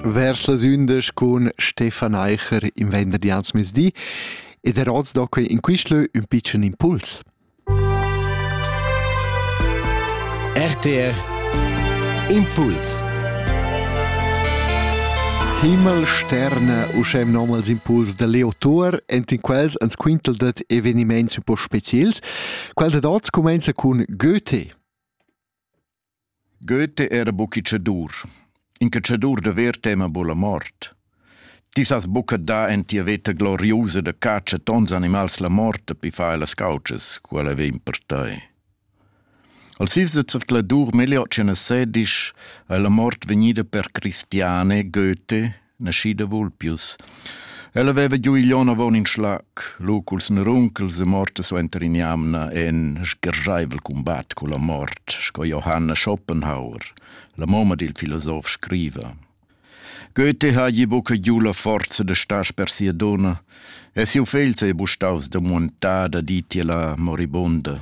Vers las undas cun Stefan Eicher in venderdi als mezdi ed er oz da quei in quistlö un pitschen impuls. RTR Impuls Himmelsterne uschem nomals impuls da Leo Thor enten quels ans quintel dat eveniments un po speziels. Quel da dots comenza cun Goethe. Goethe era bucca cedur. In cacedur davers tema buca la mort. Ti sas buca dar en tia veta gloriusa da catscha tons animals la mort pi fai las couches, quella vegn per tei. Al sis de circladur meglio ce ne sedish a la mort vegnida per Cristiane Goethe nascida Vulpius. Ella veva giu igl onn avon in schlac, lu culs neruncels e morta suenter in'jamna e in sgergeivel combat culla mort, sco Johanna Schopenhauer, la mamma dil filosof, scriva. Goethe hagi buca giu la forza da star per sia donna e siu fegl sei bustaus da muntada ditiela moribunda.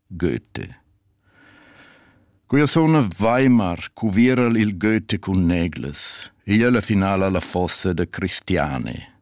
Goethe. Quia suna Weimar cuviera'l il Goethe cun neglas e ella finala la fossa da Cristiane.